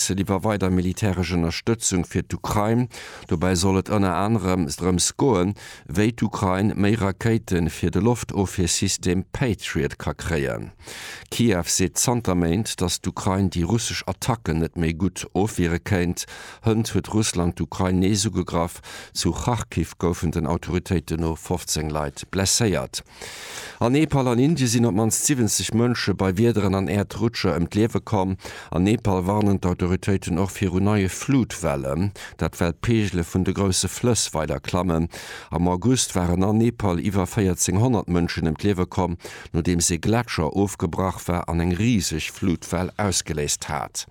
D'Fraised iwwer weider militäresch Ënnerstëtzung fir d'Ukrain. Dobäi soll et ënner anerem drëms goen, wéi d'Ukrain méi Rakéite fir de Loftofwiersystem Patriot ka kréien. Kiew seet zanter Méint, datt d'Ukrain déi russesch Attacken net méi gutt ofwiere kéint. Hënt huet Russland d'Ukrain nees ugegraff. Zu Kharkiv goufen den Autoritéiten no 15 Leit blesséiert. An Nepal an Indien sinn op d'mannst 70 Mënsche bei Wiederen an Äerdrutscher ëm d'Liewe komm. An Nepal warnen d'Autoritéiten och viru neie Flutwellen, dat well d'Peegele vun de grousse Flëss weider klammen. Am August waren a Nepal iwwer 1400 Mënschen ëm d'Liewe komm, nodeems ee Gletscher ofgebrach war an eng riseg Flutwell ausgeléist hat.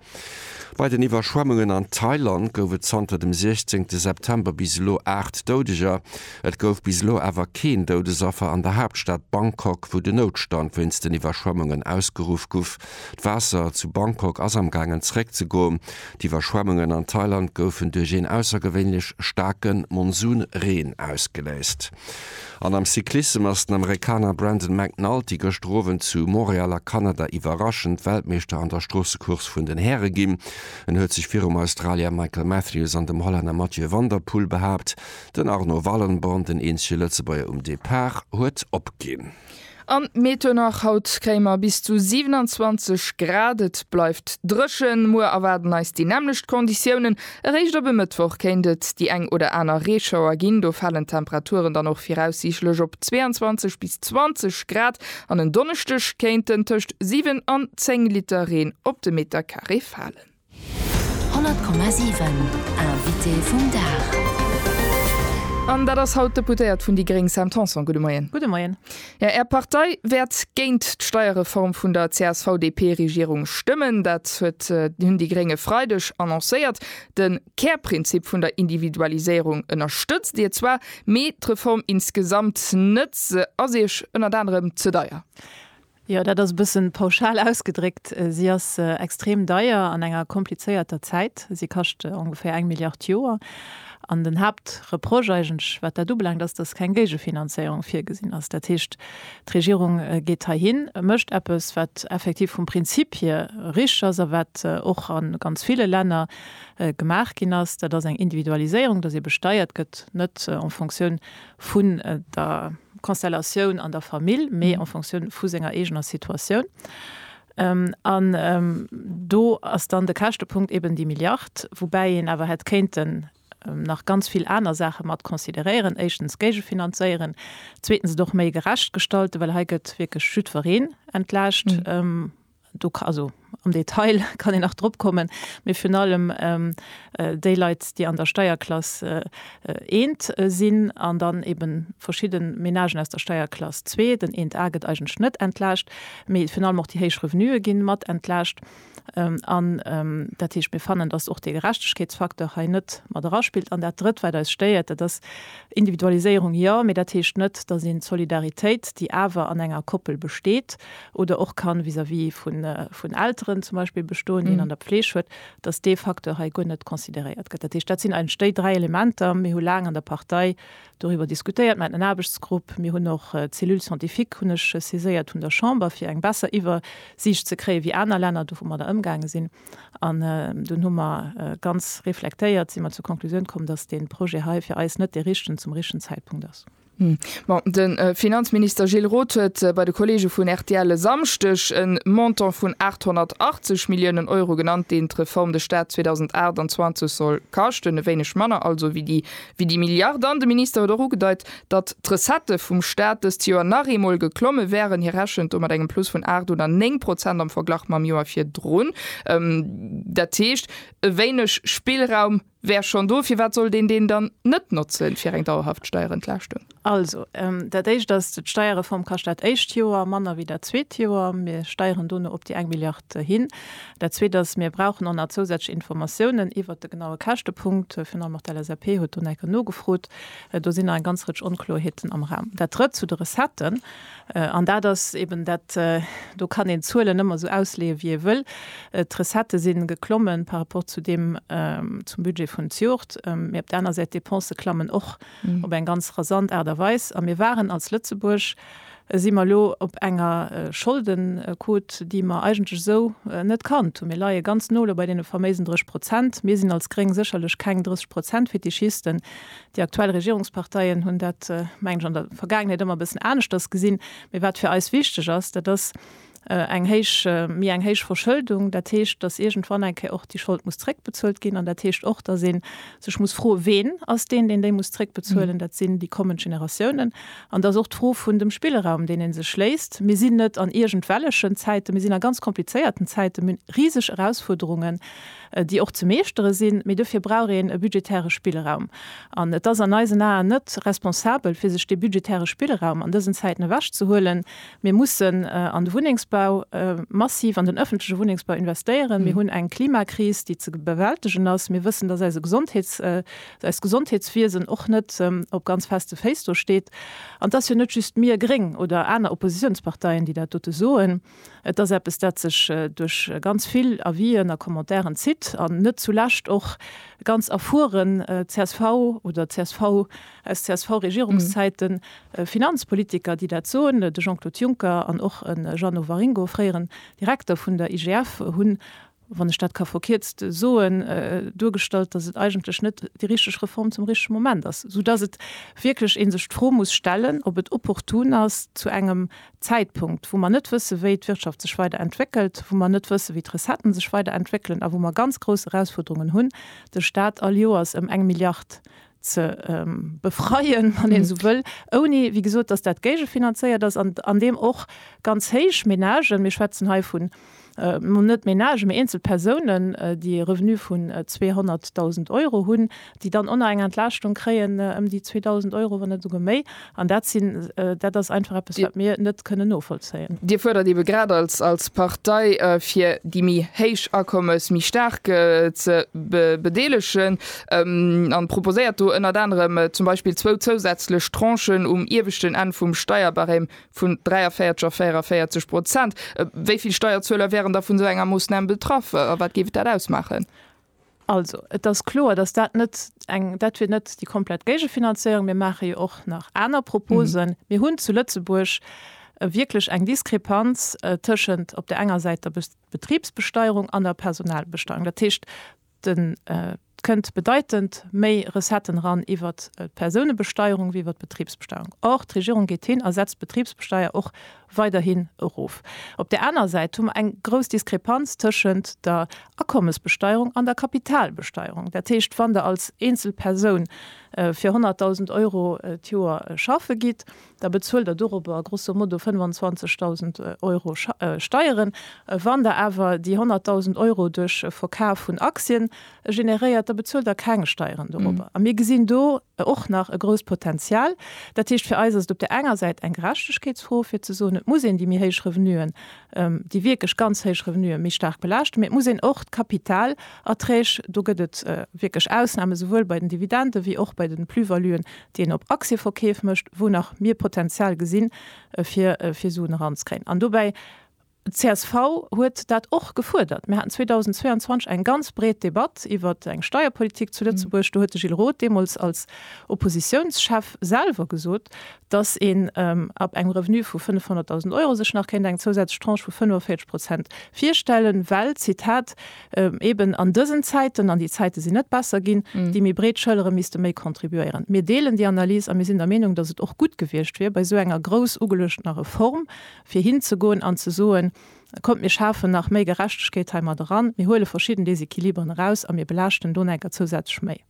Bei den Iwwerschwemmungen an Thailand gouf et zanter dem 16 September bis elo 8 Doudeger. Et gouf bis elo awer keen Doudesaffer an der Haaptstad Bangkok, wou de Noutstand wéinst den Iwwerschwemmungen ausgeruff guff. D'Waasser zu Bangkok ass am gaangen zeréck ze goen. D'Iwwerschwemmungen an Thailand goufen duerch een aussergewéinlech staarke Monsunreen ausgeléist. An am Cyclissem ass den Amerikaner Brandon McNulty gëschter Owend zu Montreal a Kanada iwwerraschend Weltmeeschter an der Stroossecourse vun den Häre ginn. En huet sech virum Australier Michael Matthews an dem Hollänner Mathieu van der Poel behaapt. Den Arnaud Wallenborn, den eenzege Lëtzebuerger um Depart, huet opginn. An Mietenach, Haut kréie mer bis zu 27 Grad, et bleift dréchen. Muer erwaarden eis déi nämmlecht Konditiounen. Eréischt op e Mëttwoch kéint et déi eng oder aner Reeschauer ginn, do falen d'Temperaturen dann och viraussiichtlech op 22 bis 20 Grad an en Donneschdeg kéinten tëscht 7 an 10 Liter Reen op de Metercarré falen. 100,7 Invité vum Dag. An dat ass haut d'Deputéiert vun déi gréng Sam Tanson. Gudde Moien. Gudde Moien. Jo, Är Partei wäert géint d'Steierreform vun der CSV-DP-Regierung stëmmen. Dat huet hunn déi gréng e Freideg annoncéiert. De Kärprinzip vun der Individualiséierung ënnerstëtzt Dir zwar, mee d'Reform insgesamt net. Se ass Iech ënnert anerem ze deier. Jo, dat ass e bëssen pauschal ausgedréckt. Si ass extrem deier an enger komplizéierter Zäit. Si kascht ongeféier eng Milliard Joer. An den Haaptreproche eigentlech, wat dat ubelaangt, ass, dass keng Géigefinanzéierung virgesinn ass. Dat heescht, d'Regierung geet heihin, mécht eppes, wat effektiv vum Prinzip hier richteg ass a wat och a ganz ville Länner gemaach ginn ass, dat ass eng Individualiséierung, dass ee besteiert gëtt, net en Fonctioun vun der Konstellatioun an der Famill, mee en Fonctioun vu senger eegener Situatioun. An do ass dann de Käschtepunkt eben déi Milliard, woubäi een awer hätt kéinten nach ganz vill aner Saache mat consideréieren, éischtens géigefinanzéieren, zweetens et och méi gerecht gestalten, well hei gëtt wierklech jiddwereen entlaascht. Do ka, also am Detail kann een nach drop kommen, mee virun allem déi Leit, déi an der Steierklass 1 sinn an dann eebe verschidde Menagen aus der Steierklass 2, den 1A gëtt eigentlech net entlaascht, mee virun allem och déi héich Revenuë gi mat entlaascht. An dat heescht, mir fannen, dass och dee Gerechtegkeetsfacteur hei net mat eraspillt. An dat Drëtt, wat eis stéiert, dat ass, Individualiséierung jo, mee dat heescht net, dass een d'Solidaritéit, déi awer an enger Koppel besteet, oder och kann vis-à-vis vun vun Elteren zum Beispill bestoen, deen an der Pfleeg huet, dass dee Facteur hei guer net consideréiert gëtt. Dat heescht, dat sinn eigentlech déi dräi Elementer. Mir hu laang an der Partei doriwwer diskutéiert, mir haten en Aarbechtsgrupp, mir hunn och d'Cellule scientifique hunn ech saiséiert vun der Chamber, fir eng besser Iwwersiicht ze kréien, wéi aner Länner domadder ëmgaange sinn. An dunn hu mer ganz reflektéiert, si mer zur Konklusioun komm, dass dee Projet hei fir eis net dee richtegen zum richtegen Zäitpunkt ass. Ma de Finanzminister Gilles Roth huet bei de Kolleege vun rtl e Samschdeg e Montant vun 880 Milliounen Euro genannt, deen d'Reform de Staat 2028 soll kaschten. E wéineg manner also wéi déi Milliard. An de Minister huet och ugedeit, datt d'Recettë vum Staat dëst Joer nach eemol geklomme wären. Hie rechent do mat engem Plus vun 8 oder 9 Prozent am Verglach mam Joer virdrun. Dat heescht, e wéineg Spillraum Wär schonn do, firwat sollt een deen dann net notzen, fir eng dauerhaft Steierentlaaschtung? Also, dat Éischt ass, d'Steierreform kascht dat éischt Joer manner wéi dat zweet Joer. Mir steieren dono op déi eng Milliard hin. Dat Zweet ass, mir brauchen och nach zousätzlech Informatiounen iwwert de genaue Käschtepunkt. Virun allem och d'LSAP huet do nach eng Kéier nogefrot. Do sinn nach eng ganz Rëtsch Onkloerheeten am Raum. Dat Drëtt, zu de Recetten. An dat ass eben dat, do kann een d'Zuelen ëmmer esou ausleeë wéi ee wëll. D'Recettë si geklommen par rapport zu deem, zum Budget vun d'Jort, mee op der aner Säit d'Depensë klammen och op eng ganz rasant Aart a Weis. A mir waren als Lëtzebuerg, si mer elo op enger Scholdenquote, déi mer eigentlech esou net kannt hunn. Mir leie ganz no elo bei deene faméisen 30 Prozent. Mir sinn als Gréng sécherlech keng 30 Prozent-Fetischisten, Déi aktuell Regierungsparteien hunn dat, mengen ech, an der Vergaangenheet ëmmer e bëssen aneschters gesinn. Mee wat fir eis wichteg ass, dat ass eng héich, méi eng héich Verschëldung. Dat heescht, datt iergendwann eng Kéier och déi Schold muss zréckbezuelt ginn. An dat heescht och, datt ee sech muss froen, ween ass deen, deen déi muss zréckbezuelen. Dat sinn déi kommend Generatiounen. An dat ass och d'Fro vun dem Spillraum, deen ee sech léisst. Mir sinn net an iergendwellechen Zäiten, mir sinn a ganz komplizéierten Zäiten, mir hunn riseg Erausfuerderungen. déi och ze meeschtere sinn, mee dofir brauch een e budgetäre Spillraum. An et ass an eisen Aen net responsabel, fir sech dee budgetäre Spillraum an dësen Zäiten ewech ze huelen. Mir mussen an de Wunnengsbau massiv, an den öffentleche Wunnengsbau investéieren. Mir hunn eng Klimakris, déi ze bewältegen ass. Mir wëssen, dass eise Gesondheets-, eist Gesondheetswiesen och net op ganz feste Féiss do steet. An et ass jo net just mir Gréng oder aner Oppositionsparteien, déi dat dote soen. Et ass eppes, dat sech duerch ganz vill Avisen a Commentairen zitt an net zu lescht och ganz erfueren csv oder csv aus CSV-Regierungszäiten, Finanzpolitiker, déi dat soen. De Jean-Claude Juncker an och e Jeannot Waringo, fréieren Direkter vun der IGF, hunn wann ech dat ka verkierzt soen, duergestallt, dass et eigentlech net déi richteg Reform zum richtege Moment ass, esoudass et wierklech ee sech d'Fro muss stellen, ob et opportun ass, zu engem Zäitpunkt, wou mer net wësse wéi d'Wirtschaft sech weider entwéckelt, wou mer net wësse wéi d'Recetten sech weider entwéckelen a wou mer ganz grouss Erausfuerderungen hunn, de Stat all Joers ëm eng Milliard ze befreien, wann een esou wëll, ouni, wéi gesot, dass dat géigefinanzéiert ass an an deem och ganz héich Ménagen, mir schwätzen hei vun, no net Ménagen, mee eenzel Persounen, déi e Revenu vun 200.000 Euro hunn, déi dann onner eng Entlaaschtung kréien ëm déi 2.000 Euro, wann net esouguer méi. An dat sinn, dat ass einfach eppes, wat mir net kënnen novollzéien. Dir fuerdert eebe grad als, als Partei, fir déi méi héich Akommes méi staark ze bedeelegen an proposéiert do ënnert anerem zum Beispill zwou zousätzlech Tranchen um ieweschten Enn vum Steierbarème vun 43 a 44 Prozent. Wéi vill Steierzueler wären da vun esou enger Moossnam betraff a wat géif dat ausmaachen? Also, et ass kloer, dass dat net eng, dat wier net déi komplett Géigefinanzéierung. Mir maache jo och nach aner Proposen. Mir hunn zu Lëtzebuerg wierklech eng Diskrepanz tëschent op där enger Säit der Betribsbesteierung an der Personalbesteierung. Dat heescht, et kënnt bedeitend méi Recetten eran iwwer d'Persounebesteierung wéi iwwer d'Betribsbesteierung. Or, d'Regierung geet hin a setzt d'Betribsbesteier och weiderhin erof. Op där aner Säit hu mer eng grouss Diskrepanz tëschent der Akommesbesteierung an der Kapitalbesteierung. Dat heescht, wann Der als eenzel Persoun fir 100.000 Euro d'Joer schaffe gitt, da bezuelt Der dorobber grosso modo 25.000 Euro Steieren. Wann Der awer déi 100.000 Euro duerch e Verkaf vun Aktien generéiert, da bezuelt Der keng Steieren dorobber. A mir gesinn do e och nach e grousst Potenzial. Dat heescht, fir eis ass et op där enger Säit eng Gerechtegkeetsfro, fir ze soen, et muss een déi méi héich Revenuen, déi wierklech ganz héich Revenuen méi staark belaaschten, mee et muss een och d'Kapitalerträg, do gëtt et wierklech Ausnamen, souwuel bei den Dividenden wéi och bei de Plus-valuen, déi een op Aktieverkeef mécht, wou nach mir Potenzial gesinn, fir Suen eranzekréien. An dobäi Csv huet dat och gefuerdert. Mir haten 2022 eng ganz breet Debatt iwwer eng Steierpolitik zu Lëtzebuerg. Do huet de Gilles Roth deemools als Oppositiounschef selwer gesot, datt een ab engem Revenu vu 500.000 Euro sech nach kéint eng zousätzlech Tranche vu 45 Prozent virstellen, well, Zitat, eben an dësen Zäiten, an déi Zäite sinn net besser ginn, déi méi breet Schëllere misste méi contribuéieren. Mir deelen déi Analys a mir sinn der Meenung, datt et och gutt gewiescht wier, bei esou enger grouss ugeluechtener Reform fir hinzegoen an ze soen, Kommt, mir schafen nach méi Gerechtegkeet heimat eran, mir huele verschidden Desequiliberen eraus a mir belaaschten d'Onhänker zousätzlech méi.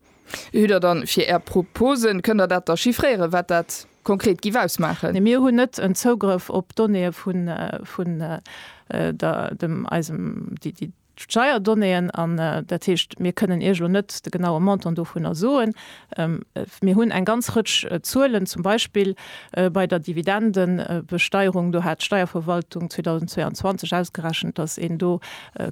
Wéi hutt Der dann fir Är Proposen? Kënnt Der dat da chiffréieren, wat dat konkret giff ausmaachen? Nee, mir hunn net en Zougrëff op d'Donnéeë vun der, dem, eisem, déi, déi. d'Steierdonnéeën, an dat heescht, mir kënnen Iech elo net de genaue Montant dovunner soen. Mir hunn eng ganz Rëtsch Zuelen, zum Beispill bei der Dividendebesteierung, do hat d'Steierverwaltung 2022 ausgerechent, dass een do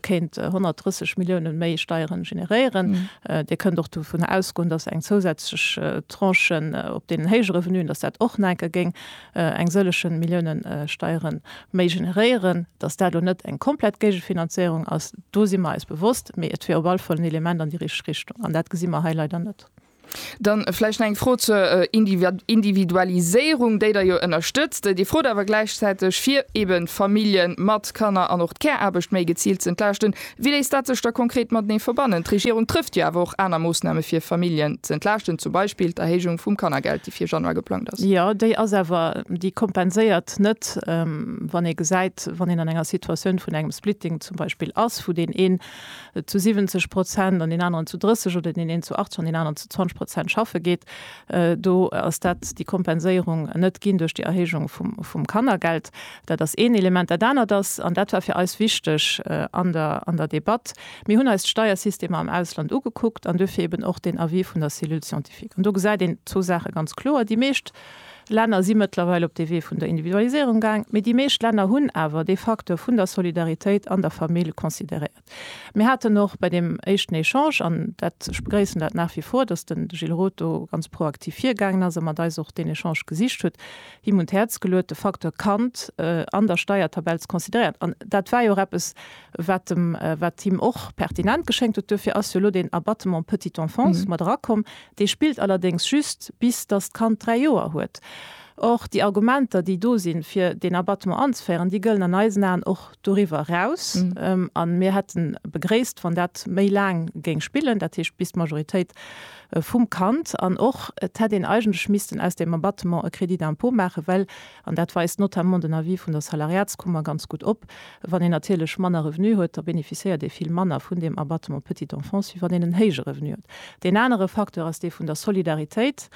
kéint 130 Milliounen méi Steiere generéieren. Dir kënnt och dovunner ausgoen, dass eng zousätzlech Tranche op deenen héije Revenuen, dass dat och nach enke géing eng sëllechen Milliounen Steieren méi generéieren, dass dat elo net eng komplett Géigefinanzéierung ass, do si mer eis bewosst, mee et wier op alle Fall en Element an déi richteg Richtung, an dat gesi mer hei leider net. Dann vläicht nach eng Fro zur Individualiséierung, déi Der jo ënnerstëtzt. Dir frot awer gläichzäiteg, fir eeben Famillje mat Kanner an och d'Care-Aarbecht méi geziilt ze entlaaschten. Wéi léisst dat sech da konkret matenee verbannen? D'Regierung trëfft jo awer och aner Moossname fir Familljen ze entlaaschten, zum Beispill d'Erhéijung vum Kannergeld, déi fir Januar geplangt ass. Jo, déi ass awer, déi kompenséiert net, wann ee gesäit, wann een an enger Situatioun vun engem Splitting zum Beispill ass, wou deen een zu 70 Prozent an deen aneren zu 30 oder deen een zu 80 an deen aneren zu 20 Prozent schaffe geet. Do ass dat, déi Kompenséierung, net ginn duerch déi Erhéijung vum Kannergeld. Dat ass een Element. Dat anert ass, an dat war fir eis wichteg an der, an der Debatt, Mir hunn eis d'Steiersystemer am Ausland ugekuckt an duerfir eben och deen Avis vun der Cellule scientifique. An do gesäit een zwou Saache ganz kloer, Déi meescht Länner si mëttlerweil op dee Wee vun der Individualiséierung gaang, mee déi meescht Länner hunn awer dee Facteur vun der Solidaritéit an der Famill consideréiert. Mir haten och bei deem éischten Echange, an dat, ech begréissen dat nach wie vor, dass den Gilles Roth do ganz proaktiv virgaangen ass a mat eis och deen Echange gesicht huet, him un d'Häerz geluet, de Facteur Kand an der Steiertabell ze consideréieren. An dat war jo och eppes, wat em, wat him och pertinent geschéngt huet. Duerfir ass jo elo deen Abattement petite enfance mat erakomm. Dee spillt allerdéngs just, bis dass d'Kand dräi Joer huet. Or, déi Argumenter, déi do sinn, fir deen Abattement anzeféieren, déi gëllen an eisen Aen och Doriwwer eraus, a mir hätte begréisst, wann dat méi laang géing spillen, dat heescht bis d'Majoritéit vum Kand, an och et hätt een eigentlech missten aus deem Abattement e Crédit d'impôt maachen, well, an dat weist notamment den Avis vun der Salariatskummer ganz gutt op, wann een natierlech manner Revenu huet, da bénéficiéiert ee vill manner vun deem Abattement petite enfance, wéi wann een en héije Revenu huet. Deen anere Facteur ass dee vun der Solidaritéit.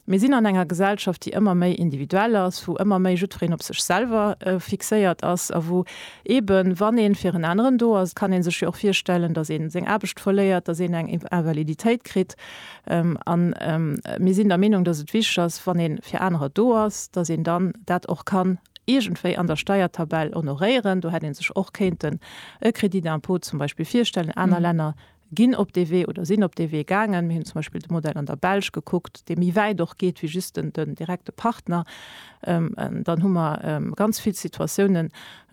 Mir sinn an enger Gesellschaft, déi ëmmer méi individuell ass, wou ëmmer méi jiddwereen op sech selwer fixéiert ass a wou eeben, wann ee fir en aneren do ass, et kann ee sech jo och virstellen, datt ee seng Aarbecht verléiert, datt een eng Invaliditéit kritt. An mir sinn der Meenung, datt et wichteg ass, wann ee fir anerer do ass, datt een dann dat och kann iergendwéi an der Steiertabell honoréieren. Do hätt ee sech och kéinten e Crédit d'impôt zum Beispill virstellen. Aner Länner ginn op dee Wee oder sinn op dee Wee gaangen. Mir hunn zum Beispill de Modell an der Belsch gekuckt, dee méi wäit och geet wéi just den, den direkte Partner. Dann hu mer ganz vill Situatiounen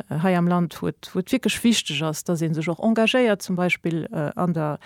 hei am Land, wou et, wou et wierklech wichteg ass, dass ee sech och engagéiert, zum Beispill an der,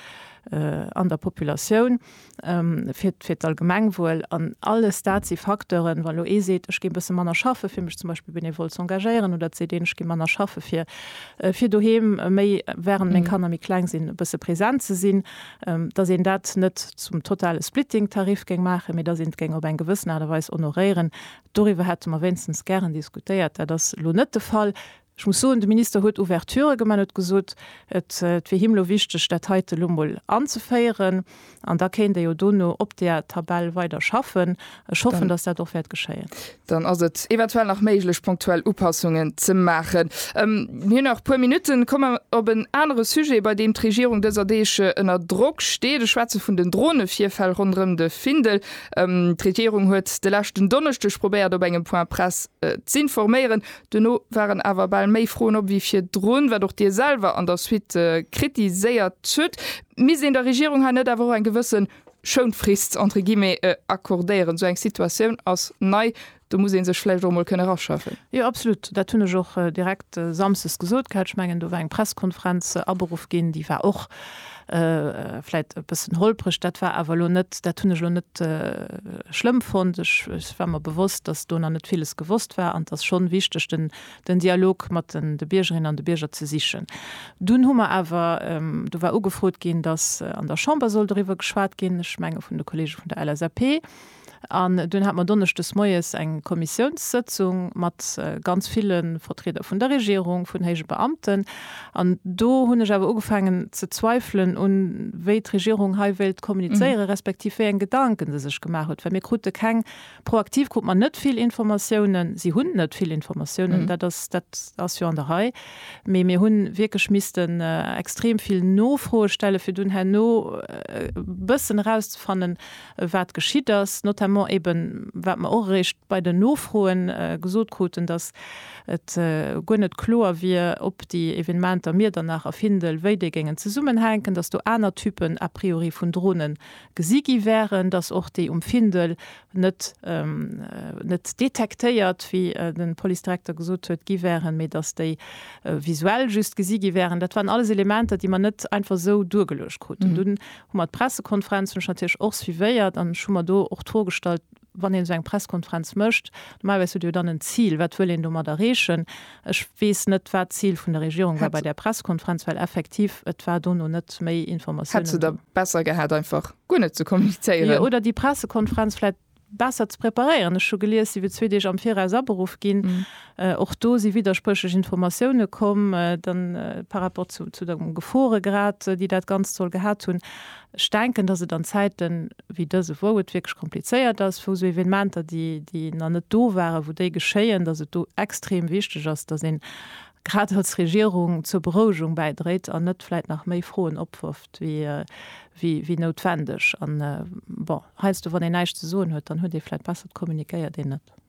an der Populatioun. fir d'Allgemengwuel. An alles dat si Facteuren, wann elo ee seet, ech géing e bësse manner schaffe fir mech zum Beispill benevol ze engagéieren, oder et seet een, ech gi manner schaffe fir doheem méi, während meng Kanner méi kleng sinn, e bësse present ze sinn, datt een dat net zum totale Splitting-Tarif géing maachen, mee datt een et géing op eng gewëssen Aart a Weis honoréieren. Doriwwer hätte mer wéinstens gären diskutéiert. Dat ass elo net de Fall. Ech muss soen, de Minister huet Ouverturë gemaach, en huet gesot, et wier him elo wichteg, dat heite elo mol anzeféieren, an da kéint ee jo dono op där Tabell weider schaffen. Ech hoffen, dass dat och wäert geschéien. Dann ass et eventuell nach méiglech, punktuell Upassungen ze maachen. Mir hunn nach e puer Minutten. Komme mer op en anere Sujet, bei deem d'Regierung dëser Deeg ënner Drock steet. Ech schwätze vun den Dronevirfäll ronderëm de Findel. D'Regierung huet de leschten Donneschdeg probéiert, op engem Point-presse z'informéieren. Duerno waren awer bal méi Froen op wéi virdrun, wat och Dir selwer an der Suite kritiséiert hutt. Misst een der Regierung hei net awer och eng gewësse Schounfrist entre guillemets accordéieren? Esou eng Situatioun ass nei, do muss ee sech vläicht och emol kënne raschaffen. Jo, absolut, dat hunn ech och direkt samsdes gesot gehat. Ech mengen, do war eng Pressekonferenz aberuff ginn, déi war och Vläit e bëssen holpreg, dat war awer elo net, dat hunn ech elo net schlëmm fonnt. Ech war mer bewosst, datt do nach net villes gewosst war an et ass schonn wichteg, den den Dialog mat den de Biergerinnen an de Bierger ze sichen. Dunn hu mer awer, do war ugefrot ginn, datt an der Chamber soll doriwwer geschwat ginn, ech menge vun de Kollege vun der LSAP, An dunn hat mer donneschdes moies eng Kommissiounssëtzung mat ganz ville Vertrieder vun der Regierung, vun héije Beamten. An do hunn ech awer ugefaangen ze zweifelen un wéi d'Regierung hei wéilt kommunizéieren, respektiv wéi eng Gedanken se sech gemaach huet, well mir krute keng, proaktiv krut mer net vill Informatiounen. Si hunn net vill Informatiounen, dat ass dat ass jo an der Rei, mee mir hu wierklech missten extrem vill Nofroe stellen, fir dunn herno e bëssen erauszefannen, wat geschitt ass, notamment eeben, wat mer och eréischt bei den Nofroe gesot kruten, datt et guer net kloer wier, ob déi Evenementer Miedernach a Findel, wéi déi géingen zesummenhänken, datt do aner Typen a priori vun Drone gesi gi wären, datt och déi um Findel net net detektéiert, wéi de Policedirekter gesot huet, gi wären, mee datt déi visuell just gesi gi wären. Dat waren alles Elementer, déi mer net einfach esou duergeluecht kruten. Dunn Hu mer d'Pressekonferenz hunn ech natierlech och suivéiert an ech hu mer do och d'Fro gestallt, wann een esou eng Presskonferenz mécht, normalerweis huet Dir jo dann en Zil, wat wëll een domat erreechen? Ech weess net, wat d'Zil vun der Regierung war bei där Pressekonferenz, well effektiv et war dono net méi Informatiounen do. Hätt se da besser gehat, einfach guer net ze kommunizéieren? Oder déi Pressekonferenz vläit besser ze preparéieren. Ech hu gelies, si wier zwee Deeg am Viraus aberuff ginn. Och do si widderspréchlech Informatioune komm, dann par rapport zu dem Geforegrad, déi dat Ganzt soll gehat hunn. Ech denken, datt et an Zäite wéi dëse, wou et wierklech komplizéiert ass, wou esou Evenementer, déi nach net do waren, wou déi geschéien, datt et do extrem wichteg ass, datt een grad als Regierung zur Berouegung bäidréit an net vläicht nach méi Froen opwërft wéi noutwendeg. An bon. Heiansdo wann een näischt ze soen huet, dann huet ee vläit besser, et kommunikéiert een net.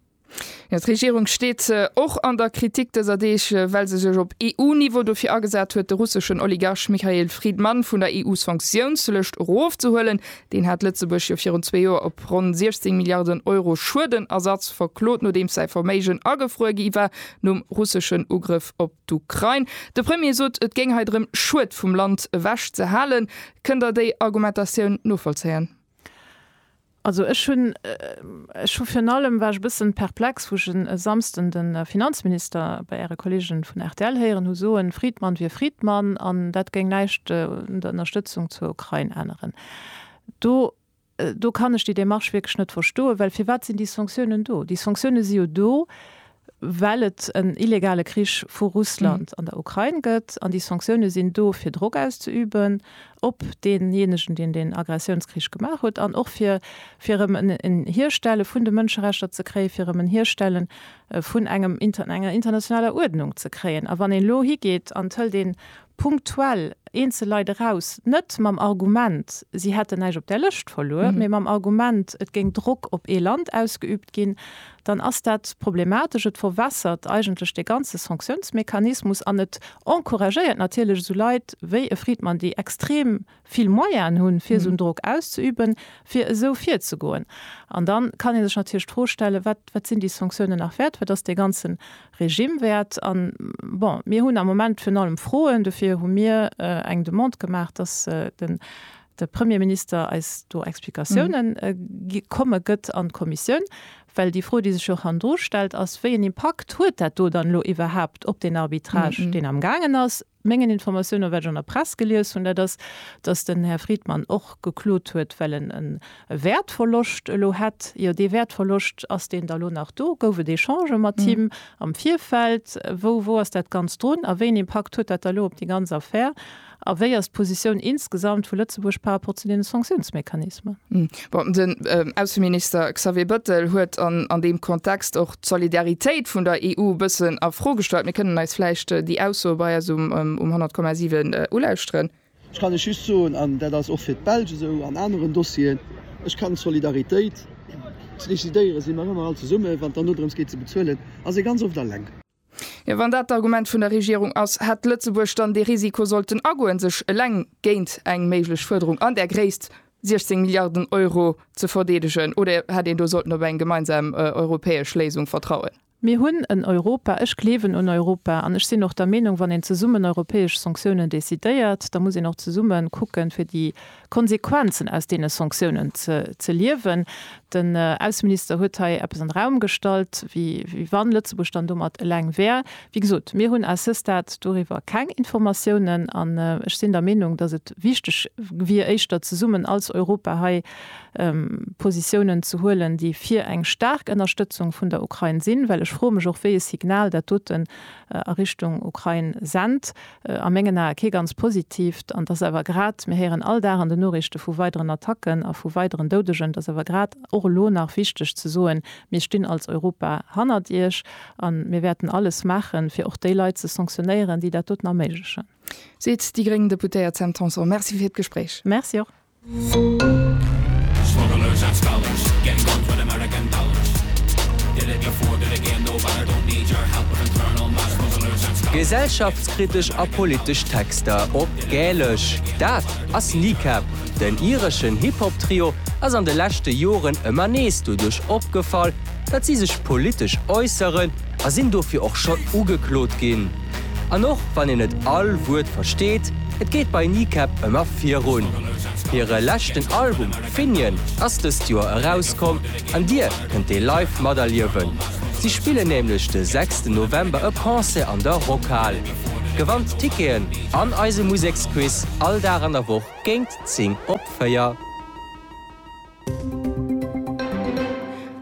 Jo, d'Regierung steet och an der Kritik dëser Deeg, well se sech op EU-Niveau dofir agesat huet, de russeschen Oligarch Michael Fridman vun der EU-Sanktiounslëscht erofzehuelen. Deen hat Lëtzebuerg jo virun zwee Joer op ronn 16 Milliarden Euro Schuedenersatz verklot, nodeems säi Verméigen agefruer gi war nom russeschen Ugrëff op D'Ukrain, De Premier sot, et géing hei drëm, Schued vum Land ewech ze halen. Kënnt Der déi Argumentatioun novollzéien? Also ech hunn, ech hu virun allem, war ech e bëssen perplex, wou ech e Samsden de Finanzminister bei Äre Kolleegen vun rtl héieren hu soen, Friedmann wier Friedmann an dat géing näischt un der Ënnerstëtzung zur Ukrain änneren. Do Do kann ech déi Démarche wierklech net verstoen, well firwat sinn déi Sanktiounen do? Déi Sanktiounen si jo do, well et en illegale Krich vu Russland an der Ukrain gëtt. An déi Sanktiounen sinn do, fir Drock auszeüben op deejéinegen, deen den Aggressiounskrich gemaach huet, an och fir erëm en Hierstelle vun de Mënscherechter ze kréien, fir erëm en Hierstelle vun enger internationaler Uerdnung ze kréien. A wann een elo higeet an et hëlt ee punktuell eenzel Leit eraus, net mam Argument, si hätten näischt op där Lëscht verluer, mee mam Argument, et géing Drock op ee Land ausgeübt ginn, dann ass dat problematesch. Et verwässert eigentlech dee ganze Sanctiounsmechanismus an et encouragéiert natierlech esou Leit wéi e Friedman, déi extrem vill Moyenë hunn, fir esou en Drock auszeüben, fir esou virzegoen. An dann kann ee sech natierlech d'Fro stellen, wat, wat sinn déi Sanktiounen nach wäert, wat ass dee ganze Regime wäert? An, bon, mir hunn am Moment virun allem Froen, dofir hu mir eng Demande gemaach, dass den, de Premierminister eis do Explikatiounen gi komme gëtt an d'Kommissioun, well déi Fro, déi sech jo och hannendru stellt, ass, wéi en Impakt huet dat do dann elo iwwerhaupt op deen Arbitrage, deen amgaangen ass? Mengen Informatiounen, wat ech an der Press gelies hunn, dat ass, datt den Här Friedmann och geklot huet, well en e Wäertverloscht elo hätt. Jo, dee Wäertverloscht, ass deen da elo nach do? Gouf et Echangë mat him am Virfeld? Wou wou ass dat Ganzt drun a wéi en Impakt huet dat da elo op déi ganz Affär? A wéi ass d'Positioun insgesamt vu Lëtzebuerg par rapport zu deene Sanktiounsmechanismen? Bon, den Ausseminister Xavier Bëttel huet an deem Kontext och d'Solidaritéit vun der EU e bëssen a Fro gestallt. Mir kënnen eis vläicht déi Ausso bei eis um 100,7 ulauschteren. Ech kann lech just soen, an dat ass och fir d'Belsch esou an aneren Dossieren, Ech kann d'Solidaritéit, ze decidéiere si mer ëmmer all zesummen, wann et dann dodrëms geet, ze bezuelen, ass ee ganz oft eleng. Jo, wann dat d'Argument vun der Regierung ass, hätt Lëtzebuerg dann dee Risiko sollten agoen, sech eleng géint eng méiglech Fuerderung an där Gréisst, 16 Milliarden Euro, ze verdeedegen? Oder hätt een do sollten op eng gemeinsam europäesch Léisung vertrauen? Mir hunn en Europa, ech gleewen un Europa an ech sinn och der Meenung, wann een zesummen europäesch Sanktiounen decidéiert, da muss een och zesumme kucken, fir déi Konsequenzen aus deene Sanktiounen ze liewen. Den Ausseminister huet hei eppes an de Raum gestallt, wéi wann Lëtzebuerg dann domat eleng wär. Wéi gesot, mir hunn à ce stade doriwwer keng Informatiounen an ech sinn der Meenung, datt et wichteg wier, éischter zesummen als Europa hei Positiounen ze huelen, déi fir eng staark Ënnerstëtzung vun der Ukrain sinn, well ech froe mech och, wéi e Signal dat doten a Richtung Ukrain sennt, a mengen Ae kee ganz positiivt, an dass awer grad, mir héieren all Dag an den Noriichte vu weideren Attacken a vu weideren Doudegen, dass awer grad och elo nach wichteg ze soen, Mir stinn als Europa hannert Iech a mir wäerten alles maachen, fir och déi Leit ze sanktionéieren, déi dat doten erméiglechen. Seet déi gréng Deputéiert Sam Tanson. Merci fir d'Gespréich. Merci och. Gesellschaftskritesch a politesch Texter op Gälesch, dat ass Kneecap. Den ireschen Hip-Hop-Trio ass an de leschte Joren ëmmer nees doduerch opgefall, datt si sech politesch äusseren a sinn dofir och schonn ugeklot ginn. An och wann een net all Wuert versteet, et geet bei Kneecap ëmmer virun. Hire leschten Album Finian ass dëst Joer erauskomm an Dir kënnt dee live materliewen. Si spillen nämlech de sechsten November e Concert an der Rockhal. Gewannt Ticketen an eise Museksquiz all Dag an der Woch géint 10 op 4.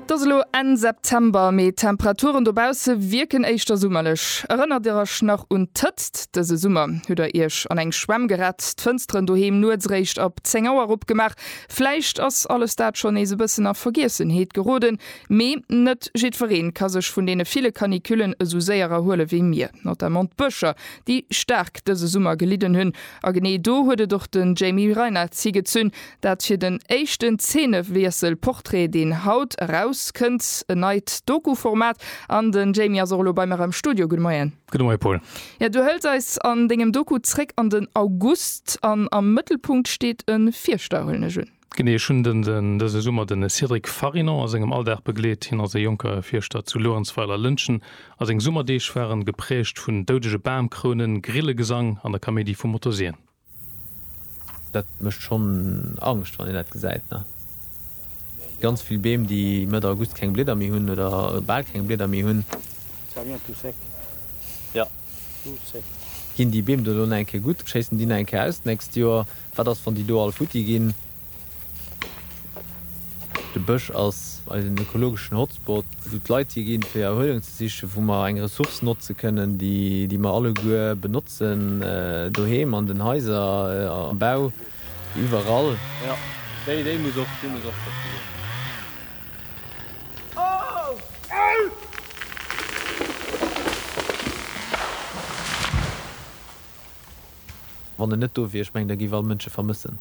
't ass elo Enn September, mee d'Temperaturen dobausse wierken éischter summerlech. Erënnert Dir Iech nach un d'Hëtzt dëse Summer? Hutt Der Iech an eng Schwämm gerett, d'Fënsteren doheem nuets eréischt ab 10 Auer opgemaach? Vläicht ass alles dat schonn nees e bëssen a Vergiessenheet geroden. Mee net jiddweree ka sech vun deene ville Canicullen esou séier erhuele wéi mir. Notamment d'Bëscher, déi staark dëse Summer gelidden hunn. A genee do huet et och de Jamie Reinartz higezunn, Dat fir den éischten Zeenewiessel, Portrait, deen haut eraus kënnt. En neit Doku-Format. An den Jamie ass och elo bei mer am Studio. Gudde Moien. Gudde Moie Paul. Jo, du hëls eis an dengem Doku zréck an den August. An am Mëttelpunkt steet e Fierschter, huelen ech un. Genee. Ech hunn dëse Summer de Cédric Farinon a sengem Alldag begleet. Hien ass e jonke Fierschter zu Luerenzweiler-Lëntgen a seng Summerdeeg waren gepräägt vun doudege Bamkrounen, Grillegesang an der Kaméidi vu Motorsien. Dat mécht schonn Angscht, wann een dat gesäit, ne? Ganz vill Beem, déi Mëtt August keng Blieder méi hunn oder bal keng Blieder méi hunn. Ginn déi Beem do elo nach eng Kéier gutt? Schéissen déi nach eng Kéier aus d'nächst Joer? Wat ass, wann déi do all futti ginn? De Bësch ass eisen ökologeschen Hotspot, wou d'Leit hi ginn, fir Erhuelung ze sichen, wou mer eng Ressource notze kënnen, déi mer alleguer benotzen, doheem, an den Haiser, am Bau, iwwerall. Wann en net do wier, ech mengen, da géif all Mënsch e vermëssen.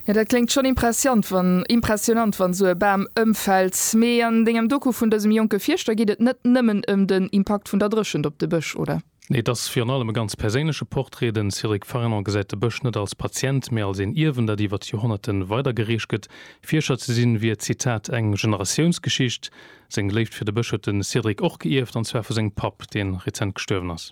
Jo dat kléngt schon impressiant wann impressionant wann sou e Bam ëmfällt. Mee an dengem Doku vun dësem jonke Fierschter geet et net nëmmen ëm den Impakt vun der Dréchent op de Bësch, oder? Nee, et ass virun allem e ganz perséinleche Portrait. Den Cédric Farinon gesäit de Bësch net als Patient, mee als een Ierwen, dat iwwer d'Joerhonnerte weidergereecht gëtt. Fierscher ze sinn, wier, Zitat, eng Generatiounsgeschicht. Seng Léift fir de Bësch huet de Cédric och geierft, an zwar vu sengem Papp, dee rezent gestuerwen ass.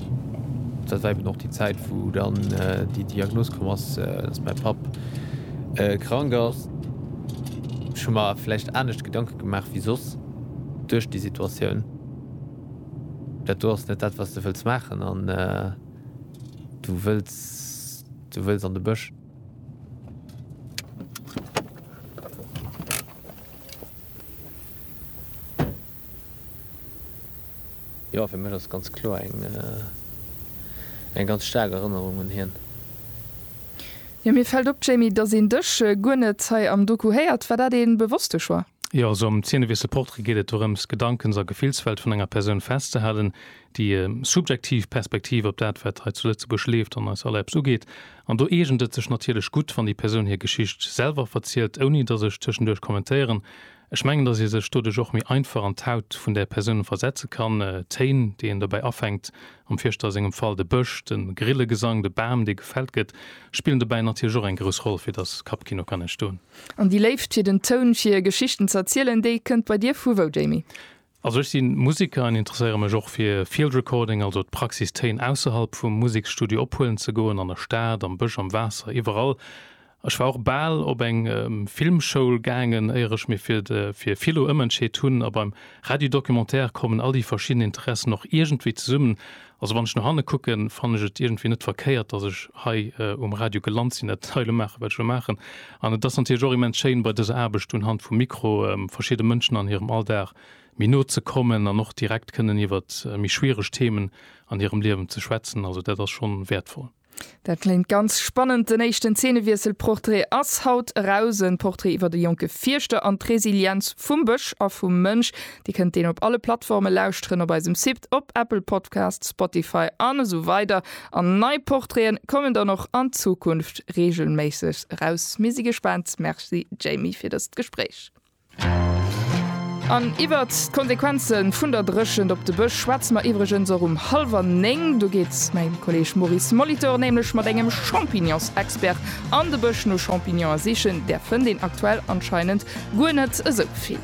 Dat war eben och déi Zäit, wou dann déi Diagnos komm ass, dass mäi Papp krank ass. Ech hu mer vläicht anescht Gedanke gemaach wéi soss duerch déi Situatioun. Dat do ass net dat, wat s de wëlls maachen an du wëlls, du wëlls an de Bësch. Jo, fir mech ass et ganz kloer eng eng ganz staark Erënnerung un hien. Jo, mir fällt op, Jamie, dass een dech guer net hei am Doku héiert. War dat ee bewosste Choix? Jo, also am Zeenewiessel Portrait geet et dorëms, d'Gedankens a Gefillswelt vun enger Persoun festzehalen, déi subjektiv Perspektiv op dat, wat hei zu Lëtzebuerg leeft an eis allerbs ugeet. An do eegent et sech natierlech gutt, wann déi Persoun hir Geschicht selwer verzielt, ouni dass ech tëschenduerch kommentéieren. Ech mengen, datt ee sech doduerch och méi einfach an d'Haut vun där Persoun versetze kann. D'Téin, déi een dobäi afänkt, am Fierschter a sengem Fall de Bësch, de Grillegesang, de Bam, dee gefällt gëtt, spillen dobäi natierlech och eng grouss Roll, fir datt Kappkino kann entstoen. An déi Léift fir den Toun, fir Geschichten z'erzielen, déi kënnt bei dir vu wou, Jamie? Also ech sinn Musiker an interesséieren mech och fir Field Recording, also d'Praxis Téin ausserhalb vum Museksstudio ophuelen ze goen, an der Stad, am Bësch, am Waasser, iwwerall. Ech war och bal op eng Filmschoul gaangen éier ech mir fir de fir Philo ëmentscheet hunn. A beim Radio Documentaire kommen all déi verschidden Interessen och iergendwéi zesummen Also wann ech no hanne kucken, fannen ech et iergendwéi net verkéiert, datt ech hei um Radio gelant sinn, dat hei elo maachen, wat ech elo maachen. An et ass natierlech och immens schéin, bei dëser Aarbecht un Hand vum Mikro verschidde Mënschen an hirem Alldag méi no ze kommen an och direkt kënnen iwwert méi schwiereg Themen an hirem Liewen ze schwätzen. Also dat ass schonn wäertvoll. Dat kléngt ganz spannend. Den éischten Zeenewiessel Portrait ass haut eraus. En Portrait iwwert e jonke Fierschter an d'Resilienz vum Bësch a vum Mënsch. Dir kënnt deen op alle Plattforme lauschteren, op eisem Sipt, op Apple Podcasts, Spotify an esou weider. An nei Portraiten kommen dann och an Zukunft reegelméisseg eraus. Mir si gespaant. Merci Jamie fir dëst Gespréich. An iwwert d'Konsequenze vun der Dréchent op de Bësch schwätze mer iwwregens och um hallwer néng. Do geet mäi Kolleeg Maurice Molitor nämlech mat engem Champignonsexpert an de Bësch no Champignonen sichen. Där fënnt een aktuell anscheinend guer net esou vill.